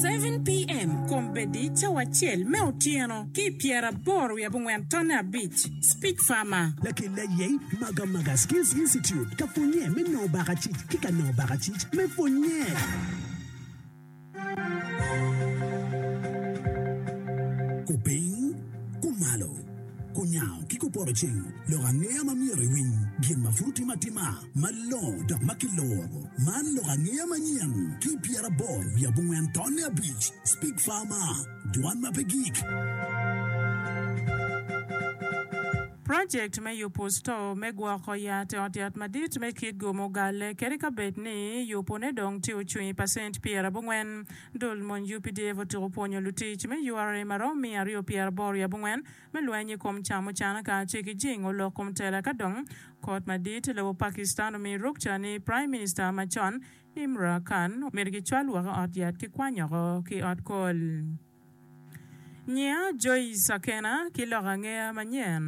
7 pm, kombeddi cawa acel me otyeno ki pyeraboro wiye abongwen tonne abic, Speech Farmer. Lakela Yey Maga Maga Skills Institute ka pwonnye me nongo baka cic ki ka nongo baka cic me pwonnye. Kupiny, kumalo, kunyango ki kupoto cing lok angeya ma myero iwiny gin ma pud utimo atima. Malongo dok ma kiloro. Man lok angeya manyen ki pyera aboro wiye abongwen tonne abic. Speak Farmer, Dwan ma pe gik. Project me yupu store me gwoko yat i ot yat madit me kit go mugalle kadi ka bed ni yupu ne dong tye ocung i percent pyera abongwen. Dul mony UPDF otuko pwonyo lutic me ura maromo miya aryo pyera aboro wiye abongwen me lweny i kom camucana kacel ki jingo lok kom tela ka dong kot madit lobo Pakistan omiyo rukca ni Prime Minister macon Imra Khan myero gicwal woko i ot yat ki kwanyoko ki ot kol nyiya Joice Akena ki lok angeya manyen.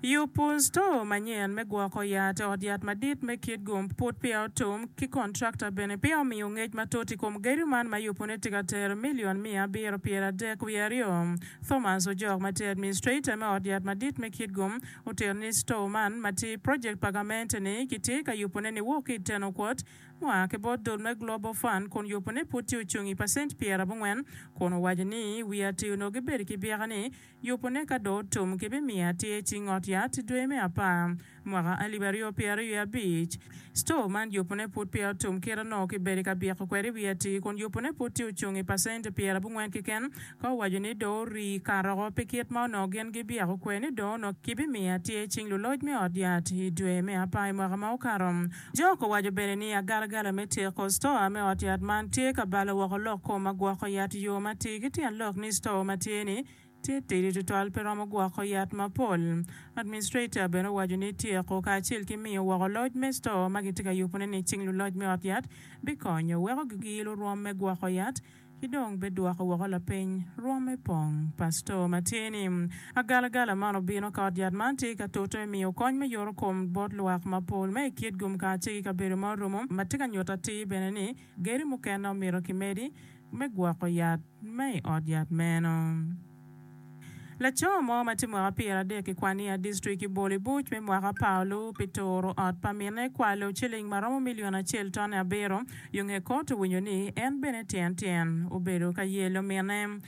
Yub pur sto manyen me gwoko yat, ot yat madit me kit gum put peya otum, ki kontrakta bene peya omiyo ngec matut i kom gedo man ma yubune tye ka tero milion miya abiro pyera adek wiye aryo. Thomas Ojok ma tye administrator me ot yat madit me kit gum otito ni sto man ma tye project pa gamente-ni kitye ka yubune niwok ki i teno kwot ma oa ki bot dul me Global Fund kun yubune pud tye ocung i pacent pyera abongwen kun owaco ni wiye atir onongo gibedo ki byeka ni Yubone ka dong otum kibimiyo atir i cing ot yat dwe me apar, mwaka alip aryo pyera aryo i abic. Cito man yubone pud peya otum kite nongo kibedo i ka byeko kwede i wi atir kun yubone pud tye ocung i pacent pyera abongwen keken. Ka owaco ni dong orii karoko pi kit ma onongo gin gibyeko kwede ni dong onongo kibimiyo atir i cing luloc me ot yat i dwe me apar i mwaka ma okato, Jok owaco bene ni agalagala me tyeko stoa me ot yat man tye ka balo woko lok kom ma gwoko yat yo ma atir ki tyen lok ni stoa ma tye ni tye tidi tutwal pe romo gwoko yat mapol. Administrator bene owaco ni tyeko kacel ki miyo woko loc me stoa ma kitye ka yubone ni cing luloc me ot yat bikonyo weko giyilo rwom me gwoko yat ki dong bidwoko woko lapeny rwomme pong. Pastor ma tye ni agalagala man obino ka ot yat man tye ka toto i miyo kony me yoto kom bot lwak mapol ma i kit gumkaa ci ki kabedo ma orumo ma tye ka nyuto atir bene ni geri mukene omito kimedi me gwoko yat ma i ot yat meno. Laco mo ma tye mwaka pyeradek i kwan i a distrik i bolo i buc me mwaka pa olu pi turo ot pa mine kwalo ciling ma romo milion acel tone abiro yo nge kot owinyo ni en bene tyen tyen obedo ka yelo mine.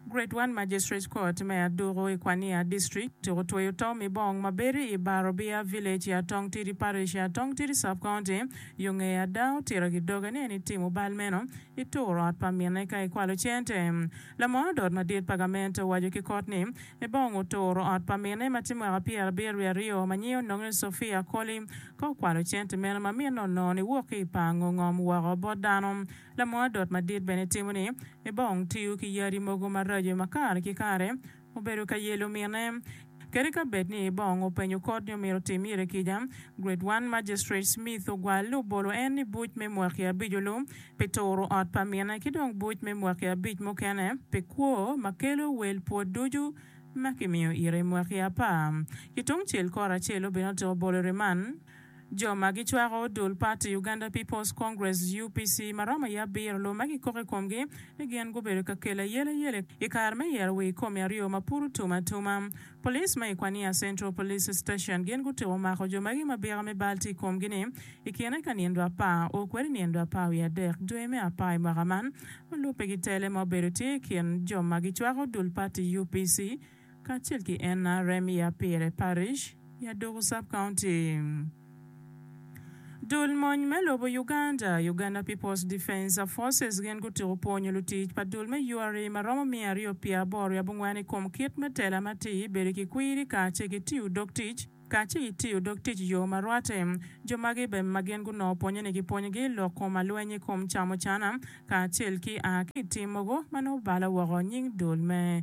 Grade One Magistrates Court me Aduku i kwan i a distrik tuk otweyo Tom Ibong ma bedo i Bar Obia Village i Atong Tidi Parish i Atong Tidi Sub County yo nge ada otito ki doge ni en itimo bal meno ituro ot pa mine ka ikwalo cente Lamor dot madit pa gamente owaco ki kot ni, Ebong oturo ot pa mine ma tye mwaka pyerabiro wiye aryo ma nyinge onongo ni Sophia Akoli, ka okwalo cente meno ma mine onongo ni wok ki i pango ngom woko bot dano. Lamor dot madit bene timo ni, Ebong tiyo ki yadi mogo maraco ma kare ki kare, Obedo ka yelo mine. Kadi ka bed ni bong openyo kot ni omyero otim ire kica, Grade One Magistrate Smith ogwalle obolo en ni buc me mwaki abic olu pi turo ot pa mine ki dong buc me mwaki abic mukene pi kwo ma kelo wel pwod ducu ma kimiyo ire mwaki apar ki tungcel kore acel-lu bene otyeko bolo i riman. Jo ma gicwako dul pati Uganda People's Congress, UPC, ma romo aye abiro lume ki kok i komgi ni gin gubedo ka kelo ayeleayele i kare me yero wii komi aryo ma pud otum atuma. Police ma i Kwania Central Police Station gin gutuko mako jo magi ma bika me bal tye i komgi ni i kine ka nindwa apar o kwede nindwa apar wiye adek dwe me apar i mwaka man ma lubbe gitele ma obedo tye i kin jo ma gicwako dul pati UPC kacel ki Enna rem ya pire parish ya doko sub county. Dul mony me lobo Uganda, Uganda People's Defence Forces gin gutyeko pwonyo lutic pa dul me URI ma romo miya aryo pye aboro ya bongwen i kom kit me tela matir, bedo ki kwiri kace ki tiyo dog tic kace ki tiyo dog tic yo ma rwate. Jo magi be ma gin gunongo pwonyo ni ki pwonyo gi lok kom alweny i kom camo cana kacel ki a ki tim mogo ma nongo balo woko nying dul me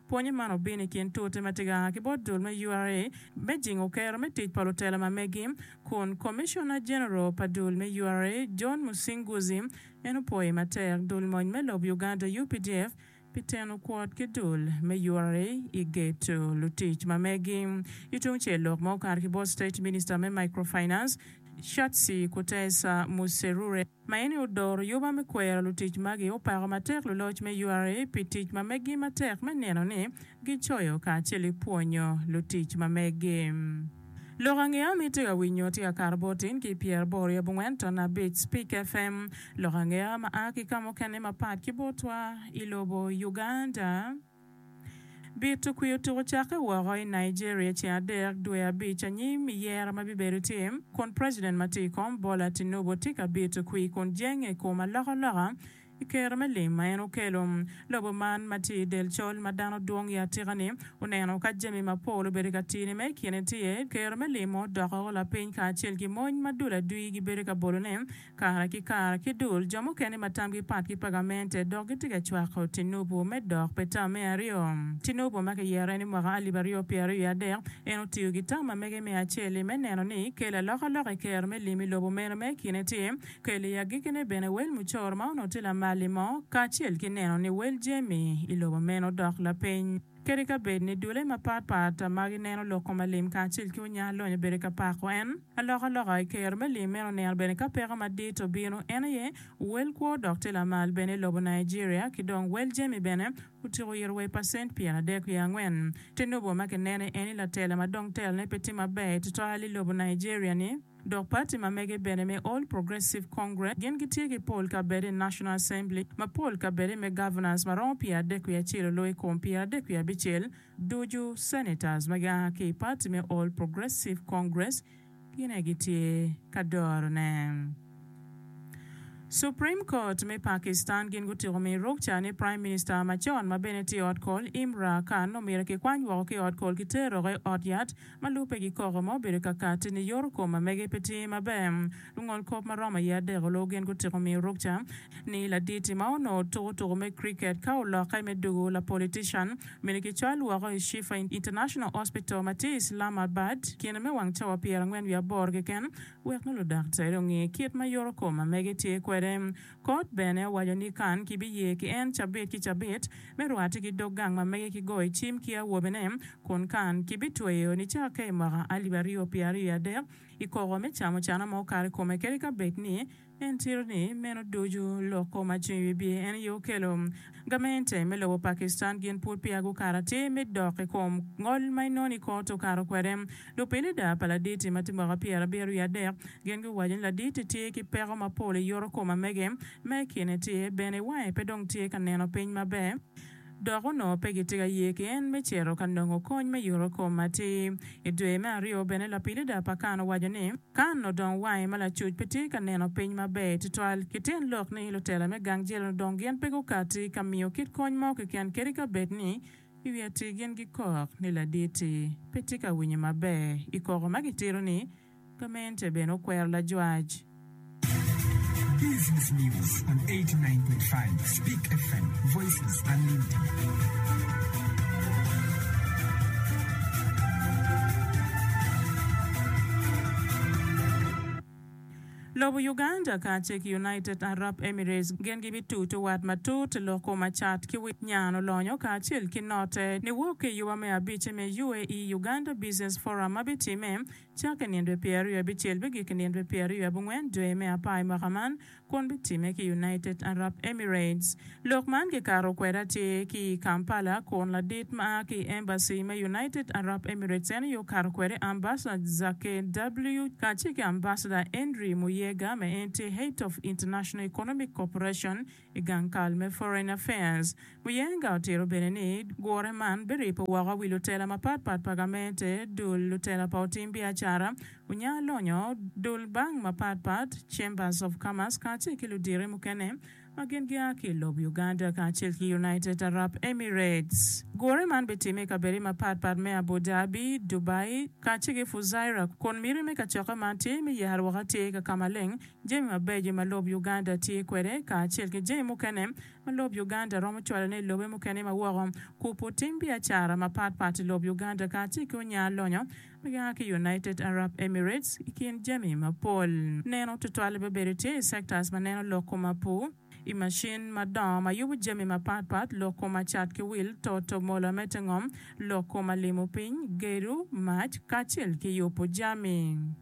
Pwonye man obino i kin tute ma tye ka a ki bot dul me ura me jingo kero me tic pa lutela ma megi, kun Commissioner General pa dul me ura, John Musinguzi, en opwoyo matek dul mony me lob Uganda, updf, pi teno kwot ki dul me ura i geto lutic ma megi. Ki tung cel lok ma okato ki bot State Minister me Microfinance, Shatsi Kutesa Muserure, ma en ni odoro yoba me kwero lutic magi, opako matek luloc me ura pi tic ma meggi matek me neno ni gicoyo kacel ki pwonyo lutic ma meggi. Lok angeya ma itye ka winyo tye ka kato bot tin ki pyer boro i abongwen ton abic Spik FM, lok angeya ma a ki ka mukene mapat ki botwa i lobo Uganda. Bi tukwio tuku cakke woko i Nigeria ceng adek dwe abic anyim i yero ma bibedo tim kun president ma tye i kom Bola Tinubu tye ka bi tukwi kun jenge i kom alokaloka i kero me lim ma en okelo. Lobo man ma tye i del col ma dano dwong i atika ni oneno ka jami ma pol obedo ka tine ma i kine tye kero me limo doko lapiny kacel ki mony ma dul adwi gibedo ka bolo ne Kare ki kare, ki dul, jo mukene ma tamgi pat ki pa gamente dok gitye ka cwako tinubu me dok pi tam me aryo. Tinubu ma kiyero en i mwaka alip aryo pye aryo i adek, en otiyo ki tam ma mege me acel-li me neno ni kel alokaloka i kero me lim i lobo meno ma i kine tye kel i agikine bene wel mucoro ma onongo tye lamal-li mo kacel ki neno ni wel jami i lobo meno dok lapiny. Kadi ka bed ni dulle mapat pat ma gineno loko ma lim kacel ki onya lony obedo ka pako en, alokaloka i kero me lim meno oneno bene ka peko madit obino. En aye wel kwo dok tye lamal bene i lobo Nigeria, ki dong wel jami bene otyeko yito wa i pacent pyeradek wiye angwen. Tinubu ma kinene eni latela ma dong telone pe tye maber tutwal i lobo Nigeria-ni. Dok pati ma mege bene me All Progressive Congress gin gitye ki pol kabedo i National Assembly ma pol kabedo me Governors ma romo pyerardek wiye acel olo i kom pyerardek wiye abicel ducu. Senators ma gia ki i pati me All Progressive Congress gin aye gitye ka dorone. Supreme Court me Pakistan gin gutiko miyo rwok ca ni Prime Minister macon ma bene tye i ot kol, Imra Khan omyero kikwany woko ki i ot kol kiter dok i ot yat Ma lubbe gi koko ma obedo ka katti ni yoto kom ma mege pe tye maber. Lungol kop ma romo aye adek oloo gin gutiko miyo rukca ni laditi ma onongo tuko tuko me cricket ka olokke me dugu la politician myero ki cwal woko i Shifa International Hospital ma tye Islamabad kine me wang cawa pyerangwen wiye aboro keken wek nongo ludaktari onge kit ma yoto kom ma mege tye kwede. Kot bene owaco ni Kan kibiye ki en cabit ki cabit me rwate ki dog gang ma mege ki goyo cim ki awobene, kun Kan kibitweyo nicakke i mwaka alip aryo pye aryo i adek i koko me camo cana ma okato i kome kadi ka bed ni en tito ni meno ducu lok kom ma cung i wi bye en aye okelo. Gamente me lobo Pakistan gin pud peya gukato atir me dok i kom ngol ma inono i kot okato kwede. Lupilida pa laditi ma tye mwaka pyera abiro wiye adek gin guwaco ni laditi tye ki peko mapol i yoto kom amege ma i kine tye bene wange pe dong tye ka neno piny maber dok onongo pe gitye ka ye ki en me cito ka nongo kony me yoto kom atir. I dwe me aryo bene lapilida pa kan owaco ni. Kan odong wange ma lacuc pe tye ka neno piny maber tutwal. Kiten lok ni lutela me gang jel odong gin pe gukati ka miyo kit kony mo keken kadi ka bed ni i wi atir gin gikok ni laditi pe tye ka winyo maber. I koko ma gitito ni, Gamente bene okwero lajwac. Business News on eighty nine point five Speak FM, Voices Unlimited. Lobo Uganda kacel ki United Arab Emirates gin gibitutu wat matut lok ko macat ki wi nyan olonyo kacel ki note niwok ki i yuba me abic me UAE Uganda Business Forum ma bitimme cakki nino dwe pyeraryo abicel bigikki nino dwe pyeraryo abongwen dwe me apar i mwaka man kun bitimme ki United Arab Emirates. Lok man kikato kwede atir ki i Kampala kun ladit ma a ki i embassy me United Arab Emirates en aye okato kwede Ambassador Zake W. kacel ki Ambassador Henry Muyega ma en tye Head of International Economic Cooperation i gang kal me Foreign Affairs. Muyenga otito bene ni gure man biripo woko wi lutela mapatpat pa gamente, dul lutela pa otim biacara, onya lonyo, dul bank mapatpat, Chambers of Commerce kacel ki ludito mukene ma gin gia ki i lob Uganda kacel ki United Arab Emirates. Gure man bitimme i kabedde mapatpat me Abu Dhabi, Dubai, kacel ki Fujairah kun miti me kacokke man tye me yero woko atir ka ka maleng jami mabeco ma lob Uganda tye kwede kacel ki jami mukene ma lob Uganda romo cwalone i lobe mukene ma woko, kupu tim biacara mapat pat i lob Uganda kacel ki onya lonyo ma gia ki United Arab Emirates i kin jami mapol. Neno tutwale bene bedo tye i sectors ma neno lok kom apu, i macin madongo ma yubu jami mapat pat, lok kom acat ki wil, toto mola me te ngom, lok kom alimo piny, gedo, mac, kacel ki yupu jami.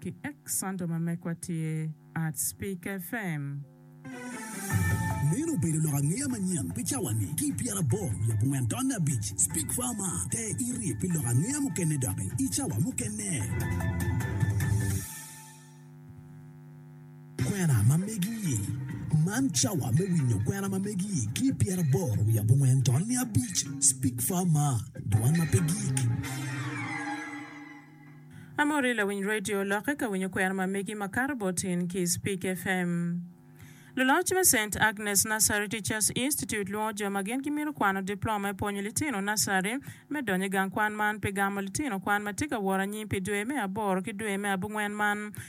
ki ek Santo ma mekwa tye at Speaker FM. Meno obedo lok angeya manyen pi cawa ni ki pyera aboro wiye abongwen tonne abic. Speak Farma, te irip pi lok angeya mukene doki i cawa mukene. Kwena ma megi i Man cawa me winyo kwena ma megi i ki pyera aboro wiye abongwen tonne abic. Speak Farma, dwan ma pe gik. Amori lawiny radio lokke ka winyo kwena ma megi ma kato bot in ki i Speak FM. Luloc me Saint Agnes Nursery Teachers Institute lwongo jo ma gin gimito kwano diploma me pwonyo litino nursery me donyo i gang kwan man pi gamo litino kwan ma tye ka woro anyim pi dwe me aboro ki dwe me abongwen man.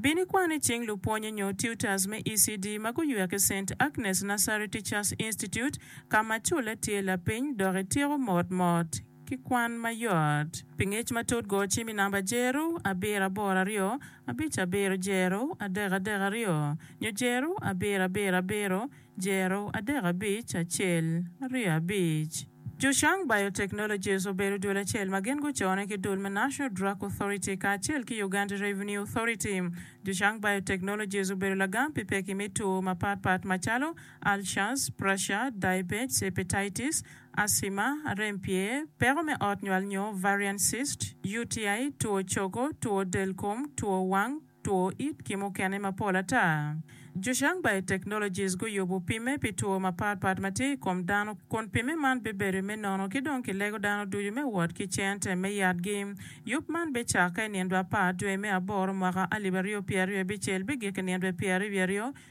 Bin ikwane cing lupwonye nyo tutors me ECD ma guywer ki Saint Agnes Nursery Teachers Institute ka ma culle tye lapiny dok ityeko mot mot ki kwan mayot. Pi ngec matut go cim i namba jeru abiro aboro aryo abic abiro jeru adek adek aryo nyo jeru abiro abiro abiro jeru adek abic acel aryo abic. Zhushang Biotechnologies obedo dul acel ma gin gucone ki dul me National Drug Authority kacel ki Uganda Revenue Authority. Zhushang Biotechnologies obedo lagam pi pekki me two mapat pat macalo ulcers, pressure, diabetes, hepatitis, asthma, rem pye, peko me ot nywal nyo ovarian cyst, UTI, two cogo, two del kom, two wang, two it ki mukene mapol ata. Zhushang Biotechnologies guyubo pimme pi two mapat pat ma tye i kom dano kun pimme man bibedo me nono ki dong kilego dano ducu me wot ki cente me yatgi. Yub man bicakke i nindwa apar dwe me aboro mwaka alip aryo pyeraryo bicel bigik i nindwa pyeraryo wiye aryo.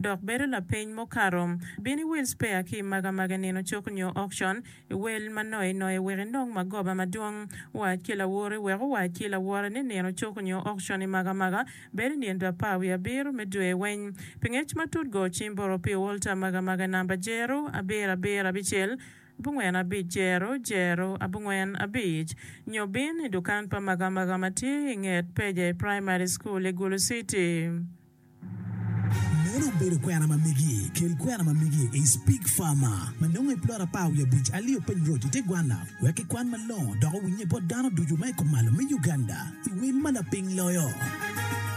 dok bedo lapeny mukato. Bin iwil spea ki i magamaga nino cuk nyo okcon, iwel ma noye noye wek inong magoba madwong. Wac ki lawori wek owac ki lawore ni nino cuk nyo okcon i magamaga bedo i nino apar wiye abiro me dwe weny. Pi ngec matut go cim boro pi olta magamaga namba jero abiro abiro abicel abongwen abic jero jero abongwen abic nyo bin i dukan pa magamaga ma tye i nget peja i Primary School i Gulu City. Meno obedo kwena ma megi. Kel kwena ma megi i Speak Farmer ma nongo i plot apar wiye abic alio piny roc i te gwanna wek kikwan malongo dok owinnye bot dano ducu ma i kumalo me Uganda i wel ma lapiny loyo.